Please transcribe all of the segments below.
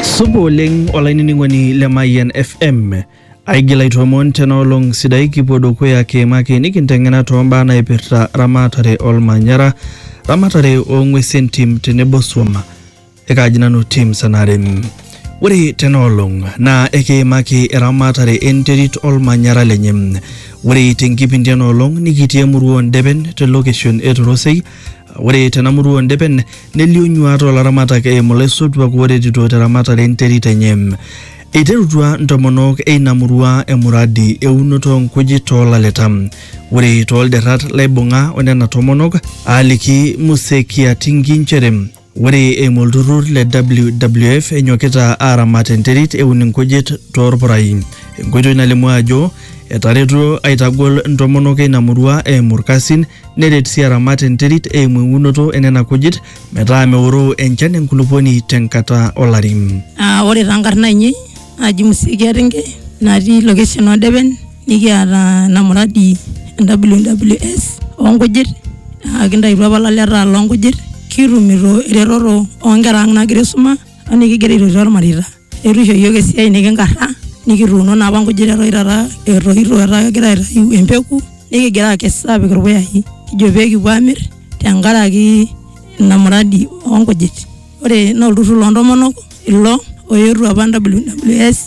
Supa oleng olainining'oni le Mayian FM. Aigil aitoomon tena olong sidai kipuo dukuya kiimaki nikinteng'ena toombaa naipirta ramatare olmanyara, ramatare oong'uesi entim tenebo swam. Ekaaji nanu Tim Sanare. Ore tena olong naa ekiimaki eramatare enterit olmanyara lenye. Ore tenkipindi ena olong nikitii emurua oo Ndepen te location e Torosei Ore tena murua o Ndepen nelio nyuaat oo laramatak eimu laisotuak ooretito te ramatare e nterit enye. Eiterutua ntomonok e ina murua emuradi e unoto oo nkujit too laleta. Ore too lderrat laibung'a o nena tomonok aaliki Muse Kiatingi nchere. Ore eimu olturrur le WWF enyokita aaramat enterit eun inkujit toorpurai. Enkoitoi nalimu ajo etaretuo aitagol ntomonok eina murua eimu ilkasin neret sii aramat enterit eimu eunoto enena kujit metaa meoroo enchan enkulupuoni tenkata olari. Ore taa nkarn aainei naji Musikia Renge natii location Odepen nikiata ena muradi e WWS oonkujit naa kintaituo apa ilaleta loonkujit kitumito eretoto oonkera ang' naagira aisuma o nikigira aitoti olmareita. Eitu eisho yook esiai nikinkarra nikituuno naa apa nkujit eton taata etoito etaa kegira aitayu empeku nikigira aakes aapik ilpuyai kijo pee kipuo aamir tenkaraki ina muradi oonkujit. ore naa olturrur loontomonok ilo oetuo apa WWS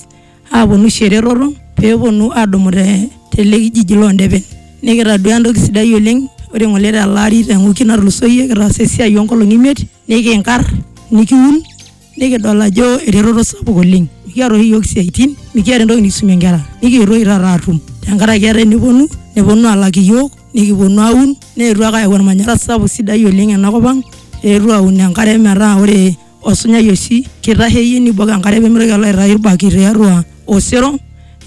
aaponu aisho eretoto peeponu aadumu te tele kijiji loondepen nikitaduaa entoki sidai oleng ore ng'ole tele ari te wiki natulusoyie kitaasa esiai oonkolong'i imiet nikinkarr nikiun nikidol ajo eretoto sapuk oleng mikiata oshi iyiook isiaitin mikiata entoki nikisumie inkera nikietuo oshi taata aatum tenkaraki etaa eneponu neponu aalak iyiook. nikiponu aun neetuo ake ayau ormanyara sapuk sidai oleng ena kop ang eetuo aun enkare metaa ore osunyai oshi kitasheyie nibok enkare pemitoki alo aitayu irbaki tiatua osero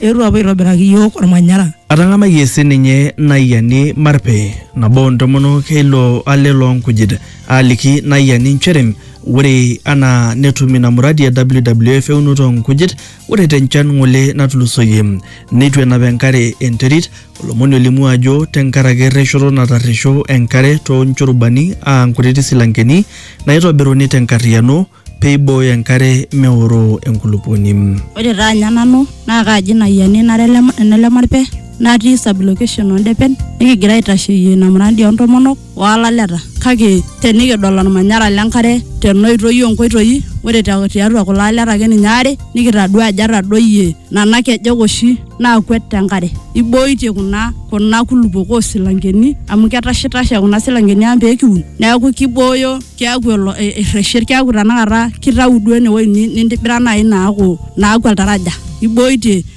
eetuo apuo aitobiraki iyiok ormanyara. Atang'amayie sininye Naiyiani Marpe, nabo oo ntomonok e ilo ale loo nkujit, aaliki Naiyiani nchere ore anaa netum ina muradi e WWF eunoto oo nkujit, ore te nchan ng'ole natulusoyie neitu enap enkare enterit, Olomoni olimu ajo tenkaraki erreshoto natarresho enkare too nchurubani aa nkutiti silankeni naaitobiruni te nkarriyiano pee eibooyo enkare meoroo enkulupuoni. Ore taa anya nanu naa kaaji ina ayiani nara ene Lemarpe natii sub-location oo Ndepen nikigira aitasheyie ina murandi oo ntomonok. o laleta. Kake tenikidol olmanyara le nkare tena oitoi oo nkoitoi, ore tiatua kulo aleta ake ninye aare nikitadua ajo etadoyie nena kejek oshi naakwet te nkare. Eiboitie kuna kuna kulupuok oo silankeni amu ketashitashe kuna silankeni ang pee kiun niaku keibooyo keaku erreshet keaku tenakata keitayu duo ene wueji nintibira naaji naaku naaku oltaraja. Eiboitie.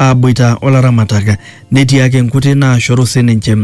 aaboita o laramatak netii ake nkuti naashoru sininche.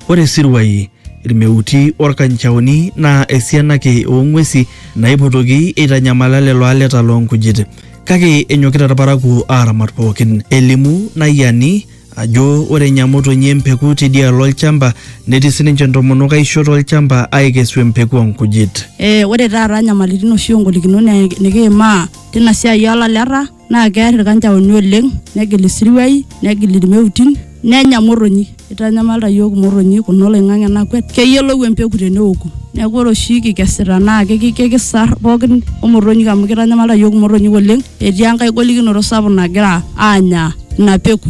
Ore isiruai, ilmeuti o lkanchaoni naa esiana ake oo ng'uesi naaipotoki eitanyamala lelo aleta loo nkujit. Kake enyokita ilparakuo aaramat pooki. Elimu Nayiani ajo ore enya motonyi empeku teidialo olchamba netii sininche ntomonok aisho to lchamba aaikesu empeku oo nkujit. Ore taata nyamalitin oshi o ngolikinot nikiimaa teina siai oo laleta. naa kear ilkanjaoni oleng negil isiruai negil ilmeutin nenya motonyi eitanyamalita iyiook imotonyi kuna oloing'ang'e nakwet keyiolou empeku teneoku neeku ore oshi kikesita naa kiki- kikisar pookin omotonyik amu keitanyamalita iyiook imotonyik oleng etii enkae golikinoto sapuk nagira aanya ina peku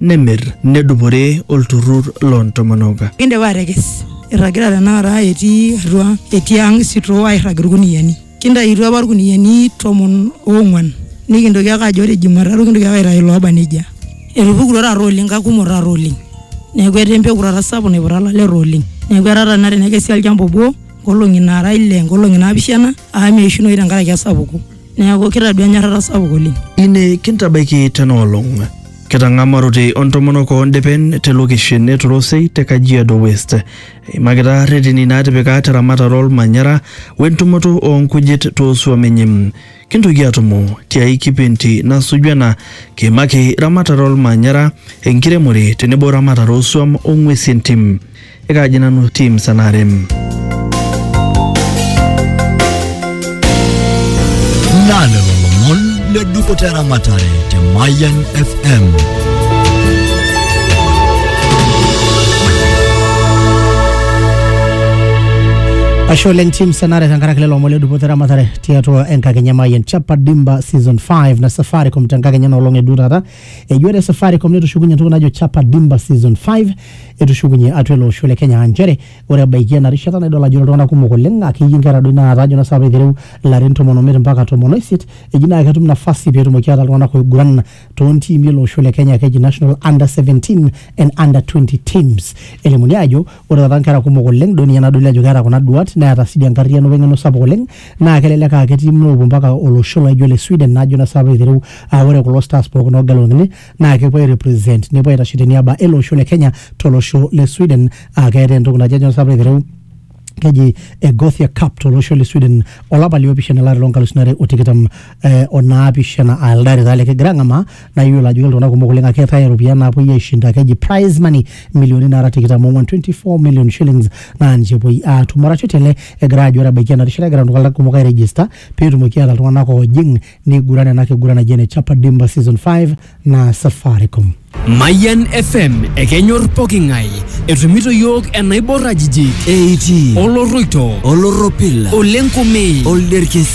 nemir nedupore olturrur loo ntomonok. Kindipa atekes, irragita tenakata etii atua etii ang isitoo airrag ilkuniyiani. Kintaituo apa ilkuniyiani tomon oong'uan nikintoki ake ajo ore jumatatu kintoki ake aitayu ilooba nejia. Etupukutuo taata oleng kakumok taata oleng. Neeku etaa empeku taata sapuk naiputa ilaleta oleng. Neeku etaa taata tenakata tenekesi olchamba obo nkolong'i naara ile, nkolong'i naapishana amu meishunoyu tenkaraki esapuko Neaku kitadua enyorrata sapuk oleng. Ine kintabaiki tena olong. Kitang'amarote o ntomonok oo ndepen te lokeshen e Torosei te Kajiado West. Eimakita reteni naatipika te ramatare olmanyara we ntumoto oo nkujit too suam enye. Kintoki atumo tiai kipindi nasuju ena kiimaki ramatare olmanyara, enkiremore tenebo ramatare oo suam o ng'uesi entim. Ekaaji nanu team Sanarem. Naa lelo lomon le dupoto eramatare te Mayian FM. Ashe oleng team Sanare tenkaraki lelo omon le dupoto eramatare tiatua enkakenya Mayian Chapa Dimba season 5 na Safaricom tenkakenya nolong edu taata eji ore Safaricom netushukunye entoki najo Chapa Dimba Season 5 etushukunye atua ele osho le Kenya aa nchere ore ebaiki ena rishata naa idol ajo ore iltung'anak kumok oleng akeyie inkera doi naata ajo naa saapa aitereu ilarin tomon omiet mpaka tomon oisiet eji naa ketum nafasi peetumoki ataa iltung'anak oiguran toontiimi ele osho le Kenya keji National Under 17 and Under 20 teams elimuni aajo ore taata nkera kumok oleng duo ninye nadoli ajo keeta kuna duat neeta sii enkarriyiano weng'eno sapuk oleng naa kelelek aa ketii moopuo mpaka olosho laijo le Sweden najo naa sapa aitereu aa ore kulo stars pookin oogeluni naa kepuo ai represent nepuo aitashe teniaba ele osho le Kenya tolosho le Sweden aa keetae entoki naji ajo naa sapa aitereu keji e Gothia Cup tolosho le Sweden olapa liopishana olari loonkalusuni are o tikitam eh, onaapishana aa elde ari taa likigira ang'amaa naa iyiolo ajo iltung'anak kumok oleng ake eetae iropiyiani naapuoi aishinda keji prize money milioni naara tikitam ong'wan 24 million shillings naa ninche epuoi aatum arashu tele egira ajo ore ebaiki ena rishata egira iltung'anak kumok ai register peetumoki aata iltung'anak oojing niguran ena kiguran naji ene chapa dimba season 5 naa safaricom Mayan FM ekenyor poking'ae etumito yiok enaibor ajijik eiti oloroito olorropil olenkume olderkesi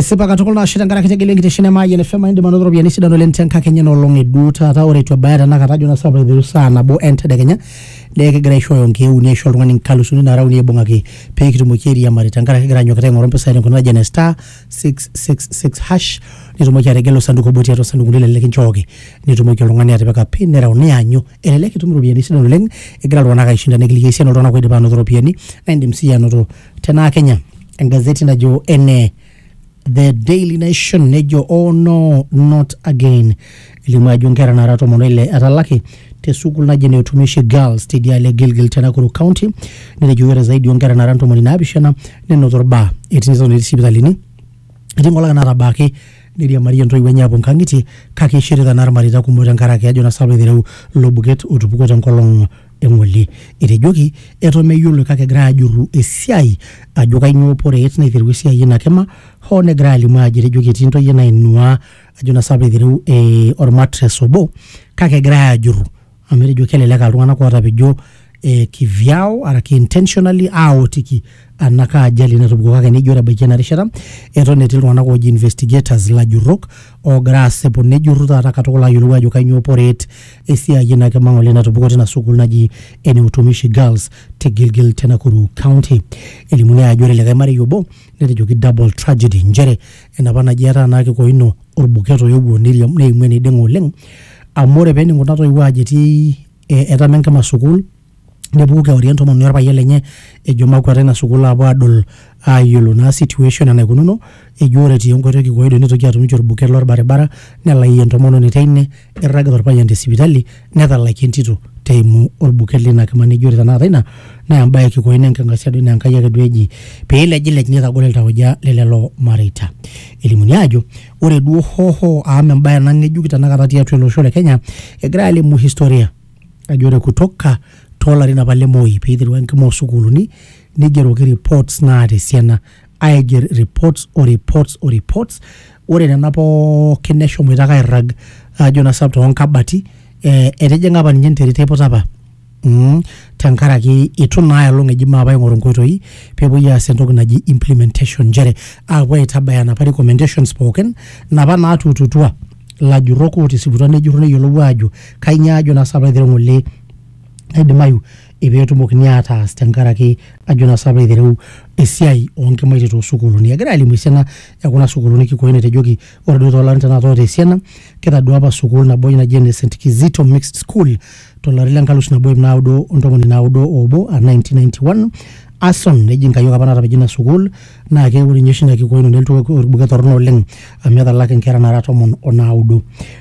Esipa katukul naa ashe tenkaraki tegelu enkitesheni e Mayian FM indim anoto ropiyiani sidan oleng tenkakenya ena olong e duo taata ore eitu ebaya tenakata ajo naa sapa aiteru saa nabo entedekenya naa ekigira aishooyo nkeek uni aisho oltung'ani nkalusuni naara uni aibung'aki pee kitumoki airiamari tenkaraki kigira anyokita aing'oru mpisai tenkoitoi naji ene star 666 hash nitumoki ategelu osanduku obo tiatua osandukuni lelo likinchooki nitumoki oltung'ani atipika pin nereu nianyu elelek itum iropiyiani sidan oleng egira iltung'anak aishinda nikiliki esiana oltung'anak oidipa anoto iropiyiani naa indim siyie anoto tenaa kenya engazeti najo ene the daily nation nejo oh no not again elimu ajo nkera nara tomon oile etalaki te sukuul naji ene utumishi girls tidialo e gilgil te nakuru county netejo ore zaidi onkera nara ntomoni naapishana nenoto orbaa etii neton etii sipitalini etii nkolong'i natabaaki neiriamarie intoiwuo enye apuo nkang'itie kake eishirita naa irmareita kumok tenkaraki ajo naa sapuk eitereu ilo buket otupukuo tenkolong eng'ole. Etejoki eton meyioloi kake egirai ajurru esiai ajo kainyoo poreet naiterua esiai ina kima hoo negirai alimu ajo etejoki etii ntoyie nainuaa ajo naa sabu eitereu eh, ormatres obo kake egirai ajurru amu etejo kelelek aa iltung'anak ootapejo eh, kivyao araki intentionally aotiki ena kaa ajali natupukuo kake nejo ore ebaiki ena rishata eton etii iltung'anak ooji investigators ilajurrok oogira aasipu nejurru taata katukul ayiolou ajo kainyoo poreet esiai ina kima ng'ole natupukuo tina sukuul naji ene Utumishi Girls te Gilgil te Nakuru County. Elimuni ajo ore likae marei obo netejoki double tragedy nchere enapa naji etaa naa kikoino orbuket oyewuo neiriam neimu eneiding'o oleng amu ore pening kuna toiwuo aajo etii etama enkima sukuul nepuku kewarie entomononi orpayian lenye ejo makwata ina sukuul aapuo aadol aayiolo naa situation enaikununo ejo ore etii enkoitoi kikoido nitoki atum ninche orbuket lorbaribara nelaayie entomononi teine irragita orpayian te sipitali netalakie entito teimu orbuket lina kima neji ore tenakata ina naa embaye e kikoi naa enking'asia duo ina Enkai ake duo eji peilejilej nitagol iltauja le lelo mareita elimuni aajo ore duo hoho amu embaye ena ng'ejuk tenakata tiatua ele osho le kenya egirae alimu historia ajo ore kutoka toolarin apa le Moi pee eiterua enkima oosukuuluni neigeroki reports naata esiana aiger reports o reports o reports ore nena pookin neshomoita ake airrag ajo naa sap toonkabati eh, etijing'a apa ninye enterit eiputa apa mm, tenkaraki itu naa elong eji maape aing'oru nkoitoi peepuoi aas entoki naji implementation nchere aapuo aitabaya napa recommendations pookin napa naatuututua ilajurrok ootisiputua nejurru neyiolou aajo kainyioo ajo naa sapa aitereu ng'ole naidimayu peetumokini ataas tenkaraki ajo naa sapa aitereu esiai oonkimaitie toosukuuluni. Egira alimu esiana ekuna sukuuluni kikoi natejoki ore duo toolarin tenakata oota esiana kitaduaa apa sukuul nabo naji ene St Kizito mixed school to lari le nkalusu nabo iip naudo o ntomoni naudo o obo a 1991 Ason neji nkayiok apa naatapejo ina sukuul naa ke ore ninye oshi ina kikoino nelotu olbuket torrono oleng amu etalaki inkera naara tomon o naudo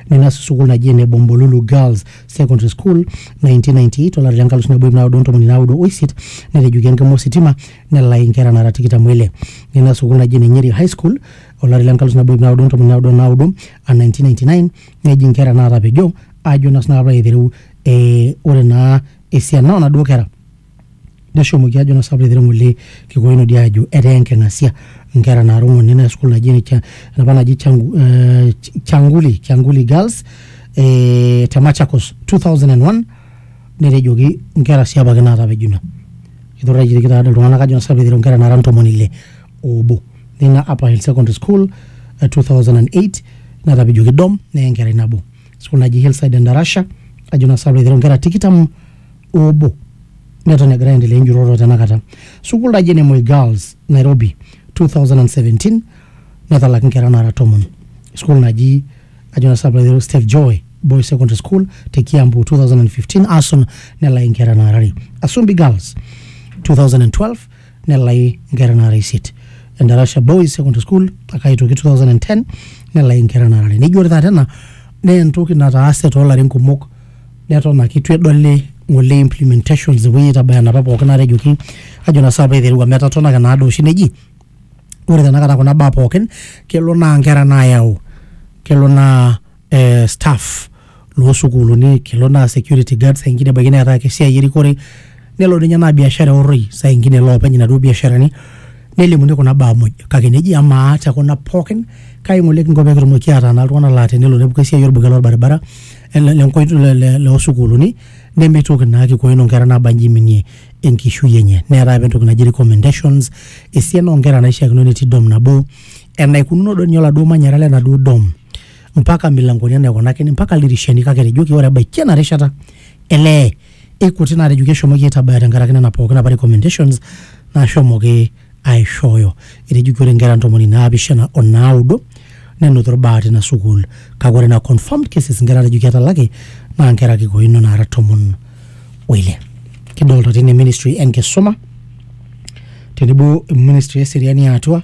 nina sukuul naji ene Bombolulu Girls Secondary School 1998 olari le nkalusu nabo iip naudo o ntomoni naudo o isiet netejuki enkima ositima nelai inkera naara tikitam o ile nina sukuul naji ene Nyeri High School olari le nkalusu nabo iip naudo o ntomoni naudo o naudo a 1999 neji nkera naatapejo ajo naa sinanu aitereu eh, ore naa esiana onaduo kera neshomoki ajo nasa aiteru ng'ole kikoin odi ajo etaa enking'asia nkera naara ong'uan nena school naji ene Cha- enapa naji Changu- eh, Ch- changuli changuli girls eh, te machakos 2001 netejoki nkera sii apake naatapejuna kitorraikieki taadi iltung'anak ajo nasa aiteru nkera naara ntomoni ile obo nina Upper Hill Secondary School eh, 2008 natapejoki dom neye enkerai nabo sukuul naji Hillside Endarasha ajo naa sababu aiteru inkera tikitam obo neton egira aendelea enjurrorro tenakata sukuul naji ene Moi Girls Nairobi 2017 netalaki inkera naara tomon sukuul naji ajo naa sababu aiteru Steve Joy Boys Secondary School te Kiambu 2015 Asun nelaki inkera naara are Asumbi Girls 2012 nelai nkera naara isiet endarasha boys secondary school mpaka aitoki 2010 nelai nkera naara are neji ore taata ena naa entoki nataase toolarin kumok neton ake itu edoli ng'ole implementations epuoi aitabaya enapa pookin natejoki ajo naa saapa aiteru amu etatona ake naado oshi neji ore tenakata kuna baa pookin kelo naa nkera naayau kelo naa eh, staff loosukuuluni kelo naa security guard saa ingine ebaiki neeta ake esiai erikore nelo ninye naa biashara orroi saa ingine loopeny inaduo biasharani nelimuni kuna baa muj kake neji amaa te kuna pookin kai ng'ole kinko pee kitumoki ataa naa iltung'anak laa tenelo nepuku esiai orbuket lorbaribara ele- lenkoitoi le- le- loosukuuluni nemeitoki naa kikoino inkera naabanji iminie enkishui enye neetai apa entoki naji recommendations esiana oonkera naishiakino netii dom nabo enaikununo duo ninye oladuo manyara lenaduo dom mpaka milangoni enaa aikunakini mpaka ildirishani kake etejoki ore ebaiki ena rishata elee ikuti naatejoki eshomoki aitabaya tenkaraki nena pookin apa recommendations naashomoki aishooyo etejoki ore inkera ntomoni naapishana o naaudo nenotito irbaa tina sukuul kake ore ina confirmed cases inkera naatejoki etalaki naa inkera ake koino naara tomon oile kidolta tine ministry enkisuma tenebo ministry eseriani e atua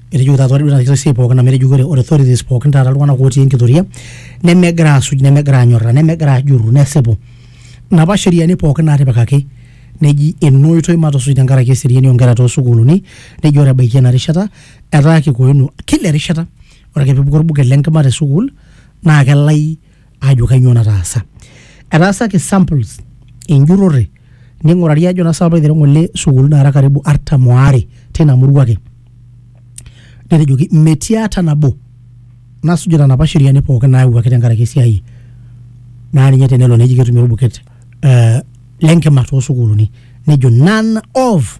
etejo taata ore taata esiai pookin amu etejo ore ore authorities pookin taata iltung'anak otii enkitoria nemegira asuj nemegira anyorra nemegira ajurru nesipu napa sheriani pookin natipikaki neji ena oitoi matusuj tenkaraki eseriani onkera tosukuluni neji ore ebaiki ena rishata etaa kikoino kila erishata ore ake pepuku orbuket lenkima tesukul naa kelai aajo kainyoo nataasa. Etaasaki samples enjurrore ning'urari ajo naa sababu aiteru ng'ole sukuul naara karibu artam oare tina murua ake. Netejoki metii ata nabo nasujita napa sheriani pookin naayawuaki tenkaraki esiai naa ninye tenelo neji ketumi orbuket eh, lenkima toosukuuluni. Nejo none of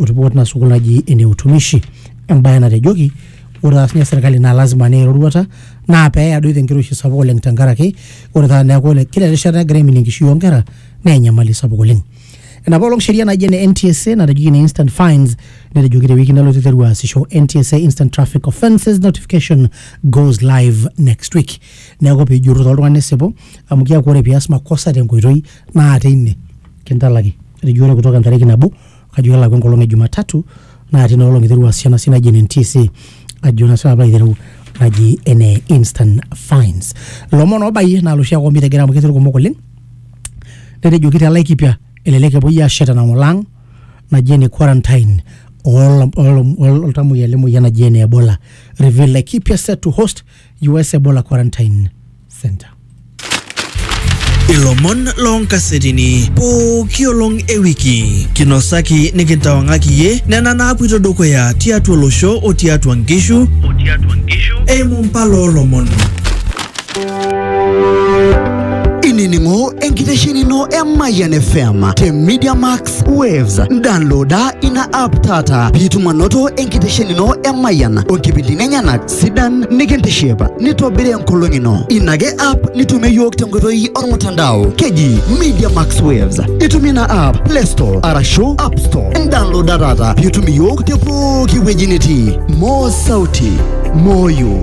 oripot ina sukuul naji ene utumishi embaye natejoki ore taas ninye serkali naa lazima neya eroruata naa peeya doi tenkiroshi sapuk oleng tenkaraki ore taata neeku ore kila erishata nagira aiminie enkishui oonkera naa enyamali sapuk oleng enapa olong sheria naji ene NTSA natejoki ene instant fines netejoki tewiki nalotu iteru aasisho NTSA instant traffic offences notification goes live next week neeku piijurru taa oltung'ani nisipu amu keeku ore pias makosa tenkoitoi naa teine kintalaki. etajuato kutoka entariki nabo kajo kelakwa enkolong e Jumatatu naa tina olong iterua sii ena siai naji ene NTSA ajo naa sinanu aitereu naji ene instant fines. Ilomon oobayie naa loshi ake omitegere amu ketii irkumok oleng netejoki te Laikipia elelek epuoi aashet enang'ole ang naji ene quarantine oltamuoyia le moyian naji ene Ebola reveal Laikipia set to host US Ebola Quarantine Center. ilomon loonkasetini pooki olong e wiki kinosaki nikintawang'aki iye nena naapuito dukuya tiatua olosho o tiatua nkishu eimu mpala oolomon inining'o enkitesheni ino e Mayian FM te Media Max Waves. Downloada ina app taata piitum anoto enkitesheni ino e Mayian o nkipindini enyenak sidan nikintishipa nitobiri enkolong ino ina ake app nitumie yiok tenkoitoi ormutandao keji media max waves itumie ina app play store arashu app store ndownloada taata piitum iyiok te pooki wueji nitii moo sauti moyo